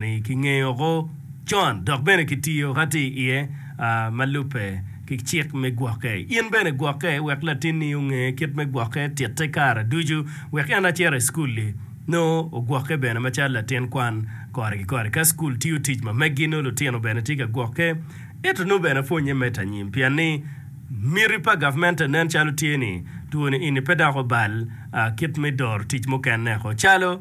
Kingeyo oko con dok bene kitiyo ka tye iye ma lubbe ki cik me gwokke. In bene gwokke wek latinni onge kit me gwokke titte kare ducu wek en acito i cukul-li. Nongo ogwokke bene macalo latin kwan kore ki kore. Ka cukul tiyo tic ma meggi, nongo lutino bene tye ka gwokke. Ento nongo bene pwonnye medde anyim pien ni miti pa gavmente nen calo tye ni two-ni eni pe dok obal kit me doro tic mukene-ko calo,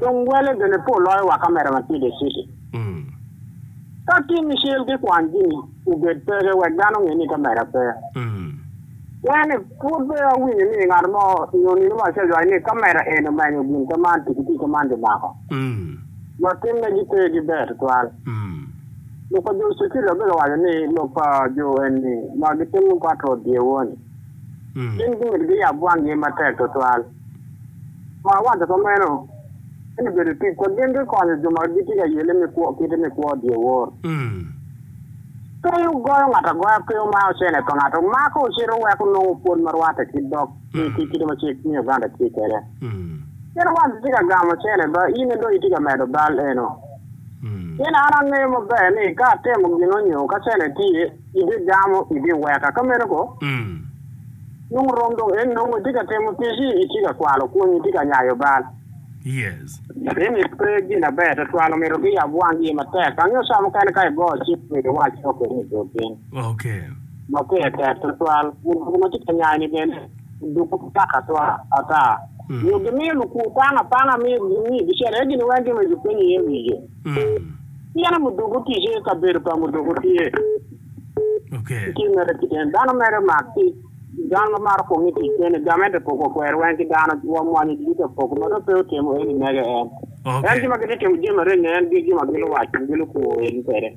Dong wele bene pe oloyo wa kamera ma tye Deciti. Ka tin ni cel ki kwan jimi obed peke wek dano onge ni kamera pe. Wene, pud pe awinyo ni ngat mo nyo nino ma acajo ai ni kamera en omenyo gin ka man pi kiti ka man bi mako. Wa tim ne gi pe gi ber tutwal. Lok pa jo Cecili wa bika waco ni lok pa jo enni ma gi timo pat rot dye woni. Gin gimito gi yab wang gi matek tutwal. Ma awaco ka meno, ento bedo tic pa gin ki konyo jo ma gitye ka yelle me kwo kite me kwo dyewor. Peyo goyo ngat agoya pe omaro ocene pa ngat, omako ocito wek onongo pwod ma rwatte ki dok ki kite ma cik me Uganda tye kwede. Kit wat itye ka gamo ocene ba in aye dong itye ka medo bal eno. Pien an angeyo maber ni ka atemo gino nyo ka cene tye, Ibigamo, ibiweka. Ka meno koh? Nongo rom dong en nongo itye ka timo ticci, itye ka kwalo pwonyi, itye ka nyayo bal. Ateni pe gin aber twatwal, omyero giyab wangi matek. Angeyo ca mukene ka igoyo cik myero iwac lok eni i bur piny. Ma pire tek twatwal. Mudoki ma tye ka nyayoni bene oduku matek ata. Nyo gimiyo lukwu panga panga, miyo gicito iye gin weng gin ma gipenyi iye wiye. Pien muduku ticce i kabedo pa muduku tye i tim mere keken. Dano mere mak tic, dano ma maro kong i tic kene, gamente poko kwero weng ki dano, wa mwanyo jigi ka poko ma dong pe otemo eni mege en. En jo ma gitye temo jami areny-ni en gin jo ma giluwaco, gilukur in kwede.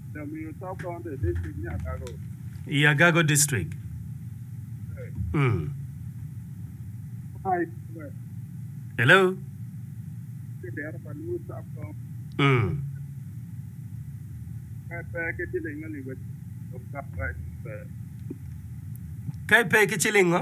I Agago District. Hello. Ka ipe ki ciling ngo?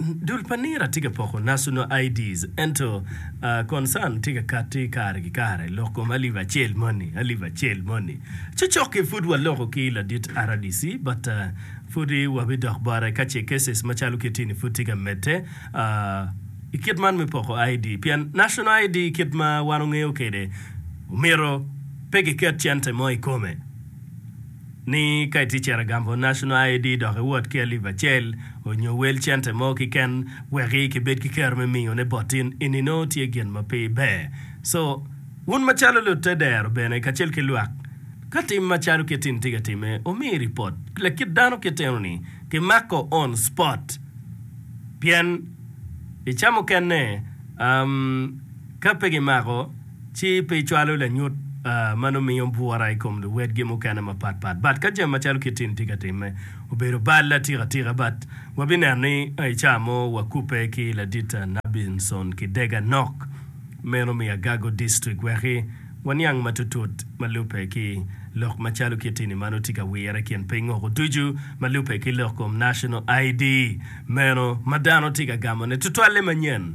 Dul pa nira tye ka poko National IDs ento concern tye ka kati kare ki kare lok kom alip acel moni alip acel moni. Cocoki pud waloko ki ladit rdc but pudi wabidok bote ka ce cases macalo kiti ni pud tye ka medde I kit man me poko ID pien National ID kit ma wan ongeyo kwede omyero pe giket cente mo I kome. ni ka itye cito gamo National ID dok iwot ki alip acel onyo wel cente mo kiken weki kibed ki kero me miyo ne bot in eni nongo tye gin ma pe ber so wun macalo lute dero bene kacel ki lwak ka tim macalo kit in tye ka time omi report lakit dano kit eno ni ki mako on spot pien icamo kene am ka pe ki mako ci pe cwalo lanyut ma nongo miyo bwura i kom luwotgi mukene mapat pat. But ka jami macalo kit-ti ni tye ka timme obedo bal atika tika, but wabineno ni i caa mo wakubbe ki ladit Nabinson Kidega Nok meno me Agago District weki waniang matutut ma lubbe ki lok macalo kit-ti ni ma nongo tye ka wire i kin piny woko ducu ma lubbe ki lok kom National ID meno ma dano tye ka gamone tutwalle manyen.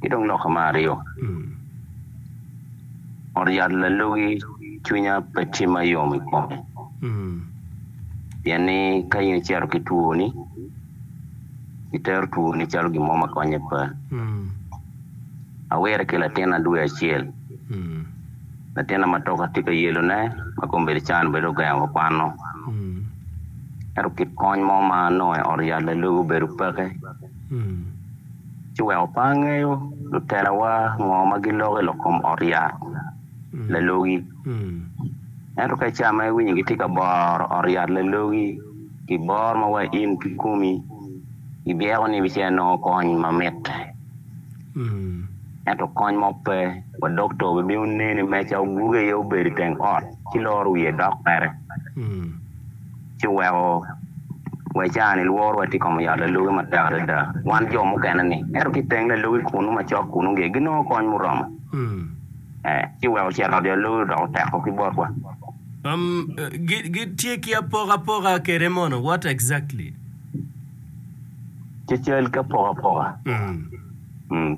Ki dong loka me aryo, ot yat lalogi cwinya pe timma yom i kome, pien ni ka in icito ki twoni, itero twoni calo gin mo ma konye pe. Awire ki latinna dwe acel, latinna ma toka tye ka yelone ma kong bedo can bedo ogengo wa kwano. Ento kit kony mo ma anongo i ot yat lalogi obedo peke. ci wek opa angeyo lutelawa ngo ma giloko i lok kom ot yat lalogi. Ento ka ica ma iwinyo gitye ka boro ot yat lalogi pi bor ma wa in kikomi, ibyeko ni ibicito inongo kony ma mitte. Ento kony mo pe, wa dokta obibino neni i meca oguge iye obedo i teng ot ci loro wiye dok kwede. ci weko wa ca-ni lworowa tye i kom oyot lalogi matek adada, wan jo mukene-ni. Ento ki i teng lalogi kunnu macok kunnu nge, ginongo kony muromo. Ci weko cet ot lalogi odok oteko ki botwa. Um, gi, gitye ki apokapoka kede mono? What exactly? Cacal ki apokapoka.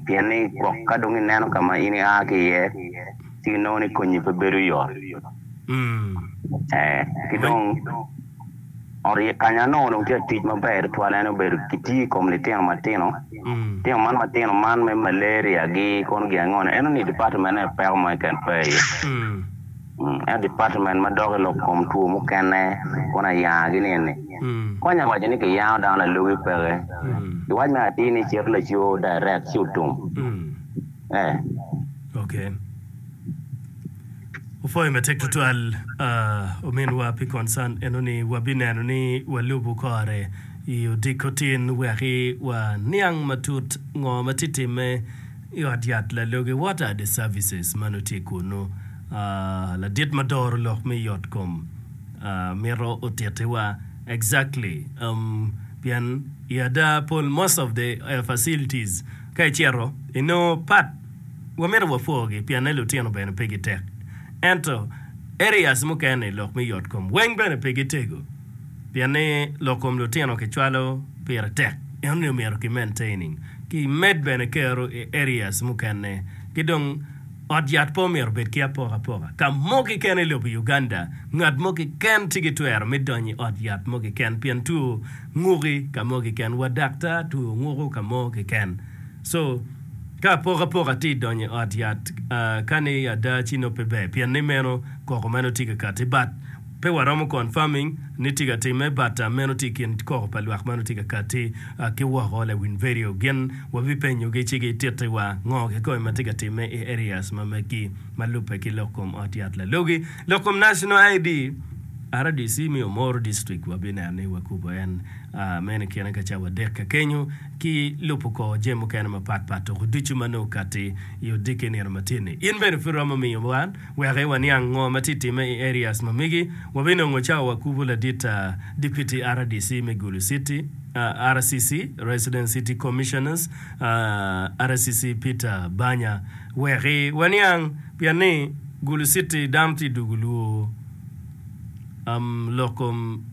Pien ni gwok ka dong ineno ka ma in ia ki iye, ci inongo ni konyi pe bedo yot. Ee, ki dong ot iye kany anongo dong tye ka tic maber tutwal en obedo kitiyo i kom litino matino. Litino man matino man me malaria-gi kono gin ango-ni, eno ni dipatmenne peko mo keken pe iye. Ento department ma dok i lok kom two mukene kono ayanga gi ni eni, konya waco ni kiyango dano lalogi peke ki wac me atir ni cito laco direct ci otum eh. Ok. Opwoyo matek tutwal ominwa pi concern eno ni wabineno ni walubu kore i odiko tin weki wa niang matut ngo ma tye timme i ot yat lalogi what are the services ma nongo tye kunu. Ladit ma doro lok me yot kom mito otitiwa. Exactly um pien i ada pol most of the facilities ka icito inongo pat wa mito wa pwogi pienne lutino bene pe gi tek ento areas mukene lok me yot kom weng bene pe gi tego pienni lok kom lutino ki cwalo pire tek ento omyero ki maintaining ki med bene kero i areas mukene ki dong Ot yat pe omyero obed ki apokapoka. Ka mo keken i lobo Uganda, ngat mo keken ci ki twero me donyo i ot yat mo keken pien two nguki ka mo keken wa dakta two nguko ka mo keken. So, ka apokapoka ti donyo i ot yat, kani ada ci nongo pe ber pien ni meno koko meno ti ka kati. But. Pe waromo confirming ni tye ka timme but meno tye ikin koko pa lwak ma nongo tye ka kati ki woko lawiny vedio gin wabipenyogi ci gitittiwa ngo kikome ma tye ka timme i areas ma megi ma lubbe ki lok kom ot yat lalogi lok kom national ID rdc me Omoro district wabineno ni wakubo en meno ikine ka cawa adek ka kenyo ki lubo ko jami mukene mapat pat tuku ducu ma nongo kati i odiki nino matye ni in bene pud iromo miyo wan Wek waniang ngo ma tye timme i areas ma megi, wabinongo cawa wakubo ladit ta Deputy rdc me Gulu City, RCC, Resident City Commissioners, RCC, Peter Banya wek waniang pien ni Gulu City dano tye dugu lwo lok kom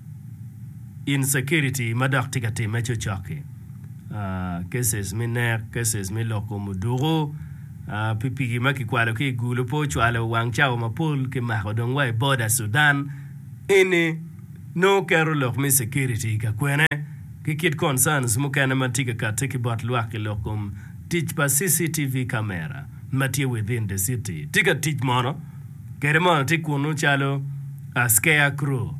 insecurity ma dok tye ka timme cocok-ki, cases me nek, cases me lok kom oduku. Pikipiki ma kikwalo ki i Gulu pe ocwalo wang cawa mapol ki mako dong wa i boda Sudan eni nongo keto lok me security i ka kwene ki kit concerns mukene ma tye ka kati ki bot lwak i lok kom tic pa CCTV camera ma tye within the city tye ka tic mono kede mono tye kunu calo scare crow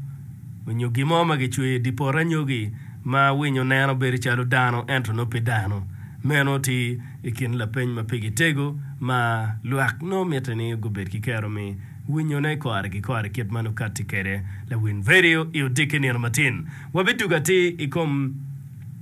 onyo gin mo ma ki cweyo i di poto anyogi ma winyo neno bedo calo dano ento nongo pe dano meno tye I kin lapeny ma pigi tego ma lwak nongo mitte ni gubed ki kero me winyone kore ki kore kit ma nongo katti kwede lawiny vedio i odiki nino matin, wabidugo atir i kom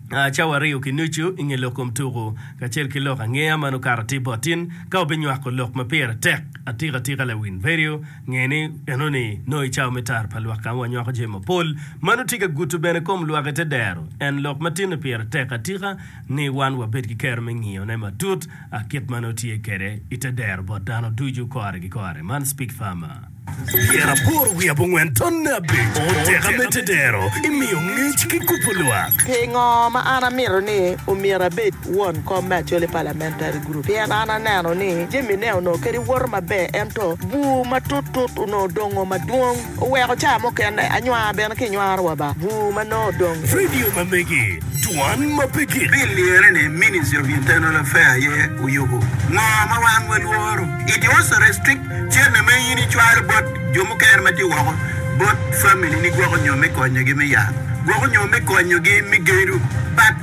cawa aryo ki nucu i nge lok kom tuku kacel ki lok angeya ma nongo kato atir bot in. Ka wabinywako lok ma pire tek atika atika lawiny vedio, nge ni enoni nongo i cawa me tara pa lwak ka ma wanywako jami mapol ma nongo tye ka guto bene kom lwak ite dero en lok ma tinne pire tek atika. ni wan wabed ki kero me ngiyone matut kit ma nongo tye kwede i te dero bot dano ducu kore ki kore. Man Speke Farmer. Pyeraboro wiye abongwen tonne abic oteka me te dero i miyo ngec ki kubo lwak. Pingo ma an amito ni omyero abed won kom me Acholi Parliamentary Group? Pien an aneno ni jamine onongo kadi woto maber ento bur matut tut onongo dongo madwong. Oweko caa mukene anywaa bene ki nywaro wa ba bur ma nongo odong. Vidio ma megi, Dwan ma pe gik. Pi lyere ni Ministry of Internal Affair aye oyubu ngo ma wan wa lworo, it also restrict cene ma in i cwalo bot jo mukene ma tye woko bot family ni gwoko nyo me konyo gi me yat gwoko nyo me konyo gi me gedo but